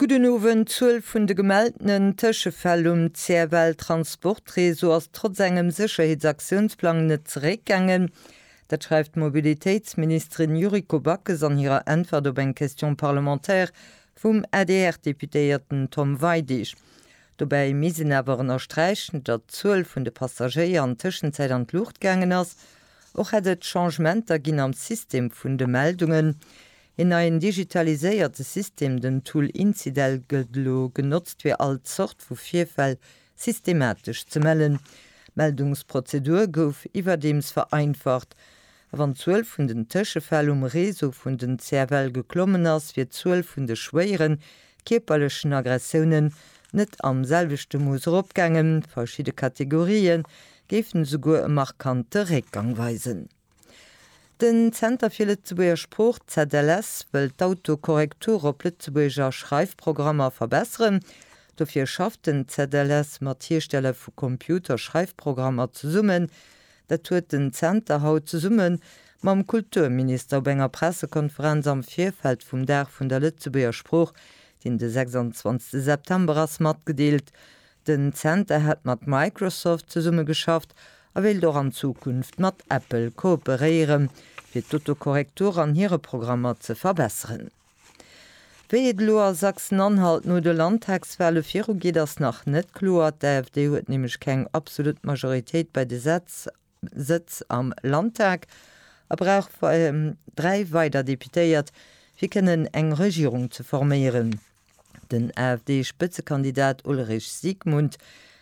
Gudden Owend, D'Zuel vun de gemeltenen Tëschefäll um CFL Transport Réseau ass trotz engem Sécherheetsaktionsplang net zeréckgaangen. Dat schreift d'Mobilitéitsministerin Yuriko Backes an hirer Äntwert op eng Question parlementaire vum ADR-Deputéierten Tom Weidig. Dobäi misst een awer ënnersträichen, datt d'Zuel vun de Passagéier an Tëschenzäit an d'Luucht gaangen ass. Och hätt et Changementer ginn am System vun de Meldungen. Een neien digitaliséierte System, den Tool Incidel, gëtt elo genotzt fir all Zort vu Virfäll systematesch ze mellen. D'Meldungsprozedur gouf iwwerdeems vereinfacht, a wann d'Zuel vun den Tëschefäll um Réseau vun den CFL geklommen ass, wier d'Zuel vun de schwéieren kierperlechen Aggressiounen net am selwechte Mooss eropgaangen, verschidde Kategorië géifen esouguer e markante Réckgang weisen. Den Zenter fir Lëtzebuerger Sprooch, ZLS, wëll d'Autokorrektur op Lëtzebuerger Schreifprogrammer verbesseren. Dofir schafft den ZLS mat Hiersteller vu Computerschreifprogrammer zesummen. Dat huet den Zenter haut zesumme mam Kulturminister op enger Pressekonferenz am Virfeld vum Dag vun der Lëtzebuerger Sprooch, deen de 26 September ass, matgedeelt. Den Zenter hätt mat Microsoft zesummegeschafft a wéilt och an Zukunft mat Apple kooperéieren, fir d'Autokorrektur an hire Programmer ze verbesseren. Wéi et elo a Sachsen-Anhalt no de Landtagswale virugeet, ass nach net kloer. D'AfD huet nämlech keng absolut Majoritéit bei de Sätz. Sëtz am Landtag a brauch dräi weider Deputéiert, fir kënnen eng Regierung ze forméieren. Den AfD-Spëtzekandidat Ulrich Siegmund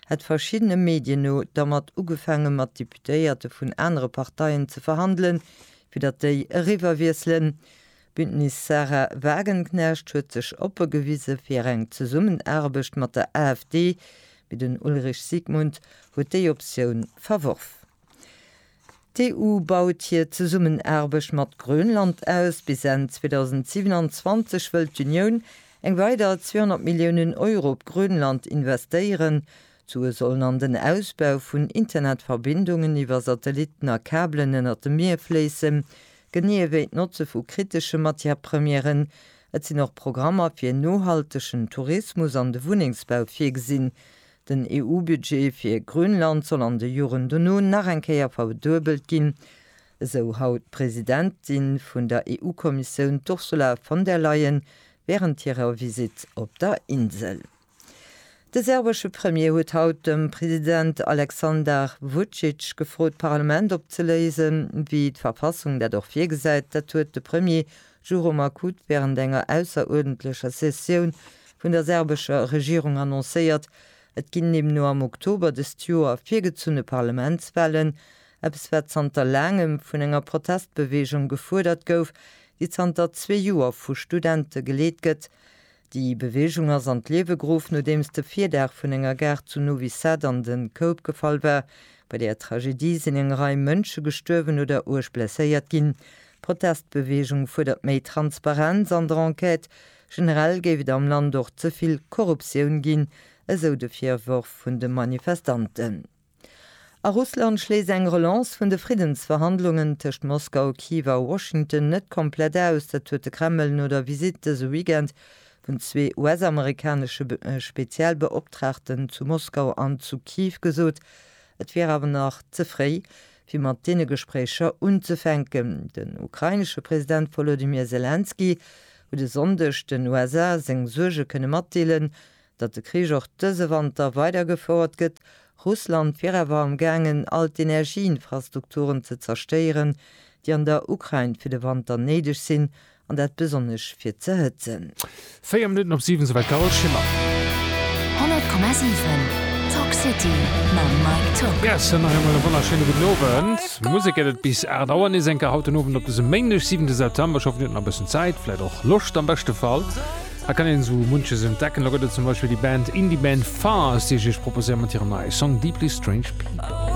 hätt verschiddene Medien no dermat ugefaange mat Deputéierte vun anere Parteien ze verhandelen, fir datt déi eriwwerwiesselen. D'Bündnis Sarah Wagenknecht huet sech oppe gewise fir eng Zesummenaarbecht mat der AfD, mee den Ulrich Sigmund huet déi Optioun verworf. D'EU baut hir Zesummenaarbecht mat Grönland aus. Bis Enn 2027 wëll d'Unioun eng weider 200 Milliounen Euro op Grönland investéieren. D'Sue sollen an den Ausbau vun Internetverbindungen iwwer Satellitten a Kabelen ënnert dem Mier fléissen, Genee ewéi d'Notze vu kritesche Matière-Premièren. Et sinn och Programmer fir nohaltegen Tourismus an de Wunnengsbau virgesinn. Den EU-Budget fir Grönland soll an de Joren dono nach eng Kéier verduebelt ginn, esou haut d'Presidentin vun der EU-Kommissioun, d'Ursula von der Leyen, wärend hirer Visitt op der Insel. De serbesche Premier huet haut dem President Aleksandar Vucic gefrot d'Parlament opzeléisen, wéi d'Verfassung dat och virgesäit. Dat huet de Premier Duro Markut wärend enger ausseruerdentlecher Sessioun vun der serbescher Regierung annoncéiert. Et ginn deemno am Oktober dëst Joer virgezunne Parlamentswahlen, eppes wat zanter laangem vun enger Protestbeweegung gefuerdert gouf, déi zanter zwee Joer vu Studente geleet gëtt. Déi Bewegung ass an d'Liewe geruff, nodeems de Virdaach vun enger Gare zu Novi Sad an de Koup gefall war. Bei där Tragedie sinn eng Rei Mënsche gestuerwen oder uerg blesséiert ginn. D'Protestbewegung fuerdert méi Transparenz an der Enquête. Generell géif et am Land och ze vill Korruptioun ginn, esou de Virworf vun de Manifestanten. A Russland schléisst eng Relance vun de Friddensverhandlungen tëscht Moskau, Kiew a Washington net komplett aus. Dat huet de Kreml no der Visitt dëse Weekend vun zwee US-amerikanesche Spezialbeoptraagten zu Moskau an zu Kiew gesot. Et wier awer nach ze fréi, fir mat deene Gespréicher unzefänken. Den ukrainesche President Wolodymyr Selenskyj huet e Sonndeg den USA seng Suerge kënne matdeelen, Datt de Krich och dëse Wanter weidergefouert gëtt, Russland wier awer am gaangen all d'Energieinfrastrukturen ze zerstéieren, déi an der Ukrain fir de Wanter néideg sinn, an dat besonnesch fir z'erhëtzen. Véier Minutten op siwen, Souwäit d'Carole Schimmer. 100,7 Talk City mam Mike Tock. Yes, an nach eemol e wonnerschéine gudden Owend. Musek gëtt et bis 8 Auer nees eng Kéier haut den Owend op dësem Méindeg, 7 September. Ech hoffen, Dir hutt nach e bëssen Zäit, vläicht och Loscht am beschte Fall. Hei kann een esou munches entdecken, lo gëtt et zum Beispill déi Band, Indie-Band Fars, déi ech iech proposéieren mat hirem neie Song Deeply Strange People.